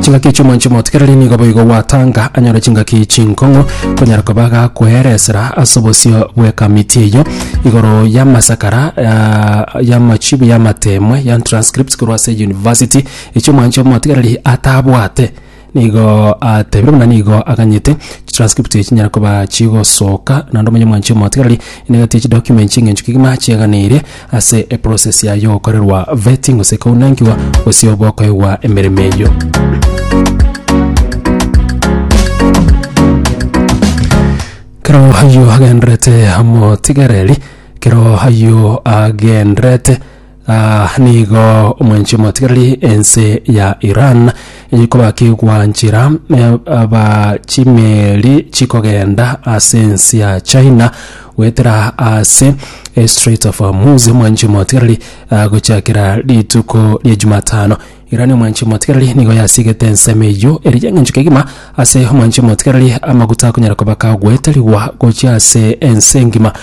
chingaki echi omonche motigereri nigo boigo gwatanga anyore chingaki chinkong'u konyara koba gakweeresera ase obosio bw'ekamiti eyo igoro y'amasakara ah, y'amachibi y'amatemwe ya transcripts korwa ase university echi omonche omotigereri atabwate nigo atebire buna nigo aganyete transcript echi chinyara koba chigosoka naende omonye omonche omotigereri enegati echi documents eng'encho kegima chiaganeirie ase eprocess yaye yogokorerwa vetting gose kounangigwa gose obo okoegwa emeremo eyio. Kero ayio agenderete amotigereri kero ayio agenderete ah, nigo omwenchi omotigereri ense ya Iran enyikoba kigwa nchira eh, aba chimeri chikogenda ase ense ya China goetera ase estrait of hormuz omwanchi omotigareri agochakera rituko ria jumatano iran omwanchi omotigareri nigo yasigete ensemo eyio eri y'eng'encho kegima ase omwanchi omotigareri amaguta akonyara kobaka goeterigwa gochia ase ense engima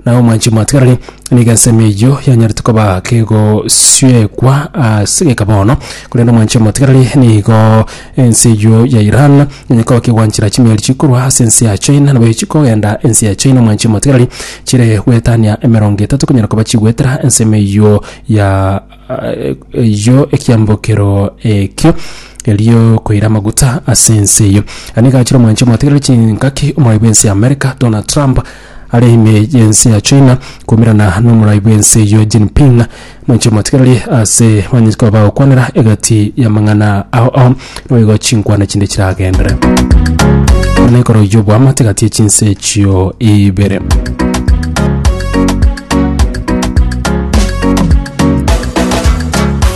nao omwanchi omotigareri nigo ensemo eyio yanyarete koba kegosiekwa ase geka bono korende omwanchi omotigareri nigo Ense eyio ya Iran nonya koba kegwanchera chimeeri chikorwa ase ense ya China, nabo chikogenda ense ya China omwancha omotigareri, chire gwetania emerongo etato konyara koba chigwetera ensemo eyio ya eyio ekiambokero ekio erio koira amaguta ase ense eyio. Ani gachire omwancha omotigareri chingaki omorwai bw'ense ya America Donald Trump Are ime y'ense ya China koumerana n'omorai bw'ense eyio Jinping noinche motigereri ase banyete koba bagokwanera egati y'amang'ana ao ao naboigo chinkwana chinde chiragendere buna ekero y'oboamate egati y'echinse echio ibere.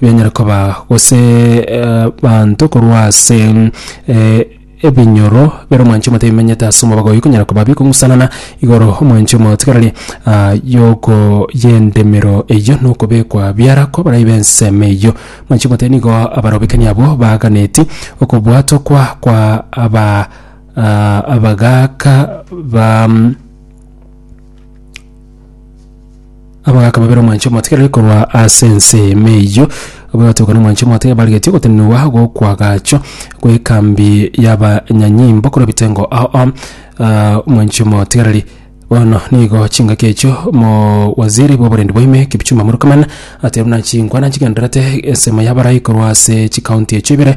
Bianyare koba gose abanto korwa ase ebinyoro bire omwanchi omote bimenyete ase omobago oyio konyara koba bikong'usanana igoro omwanchi omotigareri yoko y'endemero eyio na okobekwa biara kw'abarai b'ensemo eyio. Omwanchi omote nigo abarobekani abwo baaganeti okobwatokwa kwa aba abagaaka ba. Abagaaka babere omwanche omotigare korwa ase ense y'Eema eyio, abwo batoka n'omwanche omotigare barigetie ogotenenigwa gokwa agacho gw'ekambi y'abanyanyimbo korwa ebitengo ao ao ah, omwanchi omotigareri. Bono nigo chingaki echio omowaziri bw'oborendi bwa ime Kipchumba Murkomen atebirie buna chinkwana nchigendererete ensemo y'abarai korwa ase chikaunti echio ibere